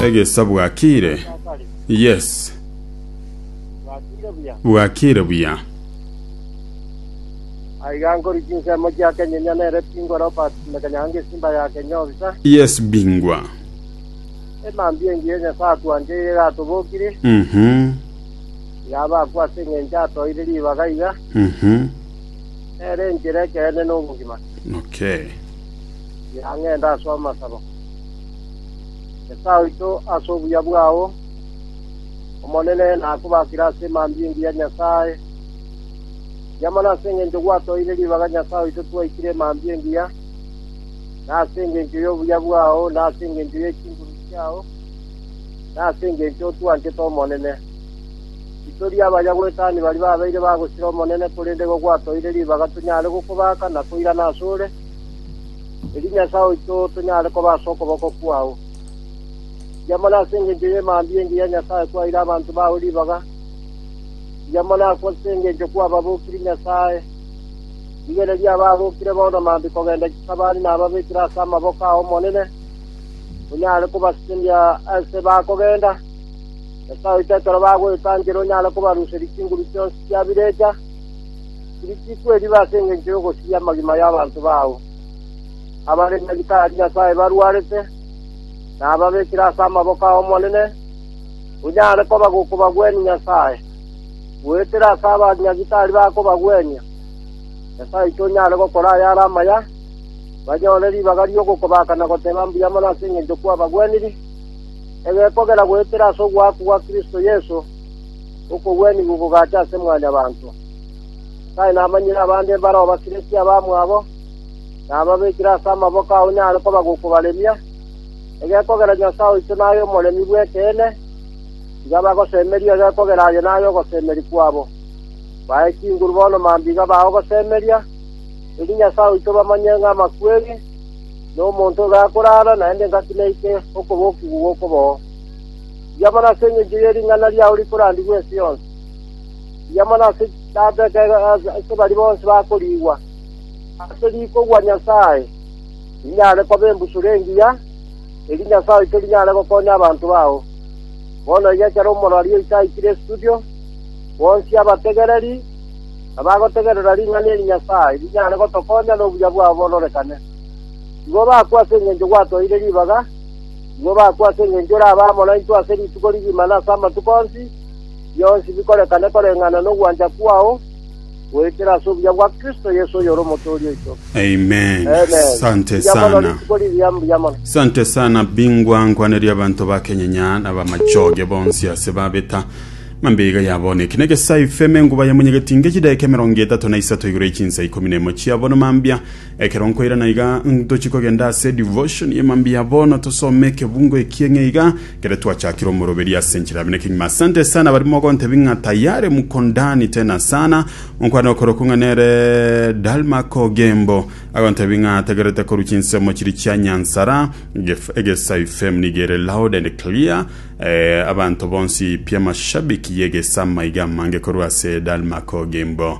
Egesa bwakire. Yes. Bwakire buya. Bwakire buya. Aiga nkori chinsemo chia Kenyenya nere Bingwa Robert Mekanyange Simba ya Kenya obisa. Yes bingwa. Emambi engi ya Nyasaye atwancheire gatobokire. Mhm. Yaba akwa seng'encha atoire ribaga iga. Mhm. Nere enchera ekeene n'obogima. Okay. Ira ng'ende ase amasabo. Nyasae oito, ase obuya bwao Omonene nakobakire ase emambia engiya Nyasae, Riamana ase engencho gwatoeire ribaga Nyasae oito twaikire emambia engiya, na ase engencho y'obuya bwao, na ase engencho ye chinguru chiao, na ase engencho otwanchete Omonene. Titori abaya gwetani bari babeire bagosira Omonene, korende igo gwatoeire ribaga tonyare gokobaka na koirana ase ore, erio Nyasae oito tonyare koba ase okoboko kwao. Tiamana ase engencho ye mambia engiya ya Nyasae kwaeire abanto bao ribaga, tiamana ase engencho kwababokirie Nyasae. Rigereria abaabokire bono mambia kogenda chisabani na ababekire ase amaboko ay'Omonene, onyare kobasiria aase bakogenda. Nyasae oito ekero bagoetangera onyare kobaruseria chinguru chionsi chia birecha, tiri chikweriba ase engencho y'ogosiria amagima y'abanto bao, abare na ritari Nyasae barwarete, na ababekire ase amaboko ay'Omonene, onyare koba gokobagwenia Nyasae, goetera ase abanyagitari bakobagwenia. Nyasae oito onyare gokora ayare amaya, banyore ribaga ri'ogokobaaka na goteba mbuya mono ase engencho kwabagweniri, egekogera goetera ase ogoakwa gwa Kristo Yeso, okogwenigwa okogacha ase Mwanyabanto. Tari namanyire abande mbare obasiretie abamwabo, nababekire ase amaboko ao nyare koba gokobaremia. Egekogera Nyasae oito naye Omoremi bw'ekeene, tiga bagosemeria egekogera aye naye ogosemeria kwabo. Bae chinguru bono mambia bao gosemeria, erinde Nyasae oito bamanye ng'a amakweri, na omonto obe akorara, naende engaki neike okobokigwa gw'okoboo. Rigia mono ase engencho ye ring'ana riao rikorandigwe ense yonsi. mbuya mono ase chisaaba ekero ase baria bonsi bakoriigwa ase rikogwa Nyasae, rinyare koba embusuro engiya, erio Nyasae oito rinyare gokonya abanto bao. Bono iga ekero omorwari oito aikire estudio, bonsi abategereri nabagotegerera ring'ana eri Nyasae rinyare gotokonya nobuya bwabo bororekane. Igo bakwe ase engencho gwatoeire ribaga, igo bakwe ase engencho orabe amo naintwe ase rituko rigima na ase amatuko onsi, bionsi bikorekane koreng'ana nogwancha kwao, goetera ase obuya bwa Kristo Yeso oyore Omotooria oito. Amen. Amen. Sante Mbuya mono sana. rituko riria, mbuya mono. Sante sana bingwa nkwaneria abanto ba Kenyenya na bamachoge bonsi ase babeta mambe iga yabona ekina egesai feme nguba yamunyegeti ngechi daika emerongo etato na isato igoro y'echinsa ikomi nemo chiabono mambia Ekero nkoirana iga, ntochie kogenda ase devotion ye mambia bono tosome ekebungo ekie ng'e iga, kere twachakire omoroberi ase enchera abene kengima. Asante sana bari mogontebi ng'a tayare muko ndani tena sana. Onkwane okorokwo ng'a nere Dalmark Ogembo agontebi ng'a atagerete korwa chinsemo chiri chia Nyansara, Gef- Egesai FM niga ere loud and clear. Eh, abanto bonsi pia mashabiki y'Egesama iga amange korwa ase Dalmark Ogembo.